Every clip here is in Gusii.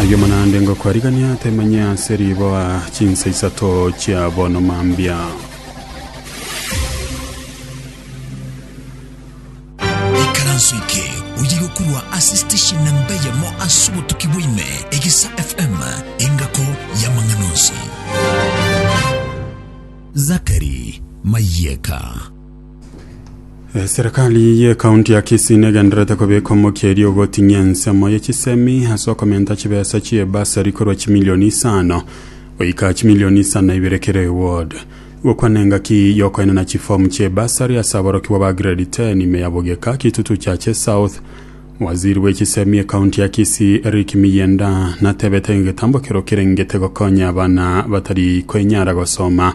Aye omonande ngokwarigania atemanye ase riboa chinsa isato chia bono mambia. ikaranso eke oye gokurwa ase station namba eyemo ase obotuki bwaime egesa fm engako y'amang'ana onsi zakari mayeka Eserekari y'ekaunti ya Kisii negenderete kobeka omokia erio ogoting'ia ensemo ye chisemi ase okomenta chibesa chi'ebasari korwa chimilioni isano goika chimilioni isano na ibere kera eward. Gokwana engaki y'okoenena chifomu chi'ebasari ase aborokigwa ba grade 10 ime ya Bogeka, Kitutu Chache South. Waziri bw'echisemi ekaunti ya Kisii Eric Miyenda natebete egetambo kerokirengete gokonya abana batari kwenyara gosoma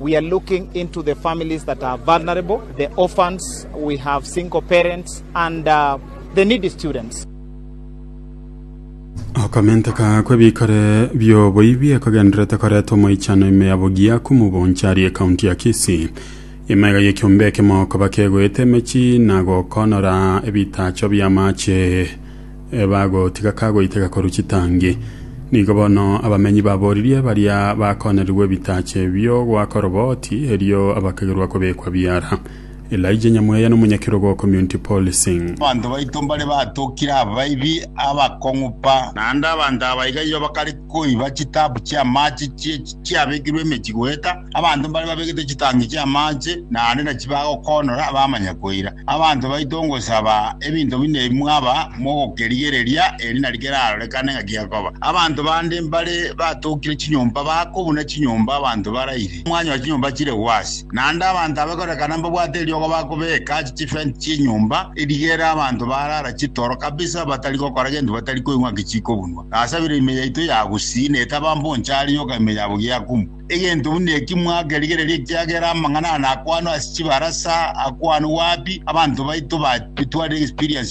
We are looking into the families that are vulnerable, the orphans, we have single parents and the needy students. Okomenteka kw'ebikore bi'oboibi ekogenderete koreta omoichano ime ya Bugia Kumuboncari ekaunti ya Kisii. Ime iga y'ekiombe ekemo koba kegoeta emechi na gokonora ebitacho bi'amache Ebagotiga kagoiteka korwa chitangi, nigo bono abamenyi baboririe baria bakoonerigwe ebitache bi'ogoaka oroboti, erio abakagerwa kobekwa biara. Elijah Nyamweya n'omonyakerogo o Community Policing. Abanto baito mbare batokire abaibi abakong'u pa. Naende abanto aba iga igo bakare koiba chitaabu chi'amaache chi'echi chiabekirwe emechie goeta. Abanto mbare babegete chitangi chi'amaache, na ande nachi bagokoonora bamanya koira. Abanto baito ngosaba ebinto buna ebi mwaba mogokerigereria, eri nari kerarorekane ng'a kiakoba. Abanto bande mbare batokire chinyomba bako buna chinyomba abanto baraire, mwanyora chinyomba chire gwasi. Naende abanto aba ekorekana mbabwate eriogo bakobeeka aase chifence chi'enyomba, erigere abanto barara chitoro kabisa batari gokora gento batari koigwa ng'a ki chikobunwa. Nasabire ime yaito ya gusii, na etaba mboncha aria yoka ime yabo giakumwa. Egento buna eki mwakerigereria, ekiagera amang'ana aya nakwanwa ase chibarasa, akwanwe wapi? Abanto baito batwarire experience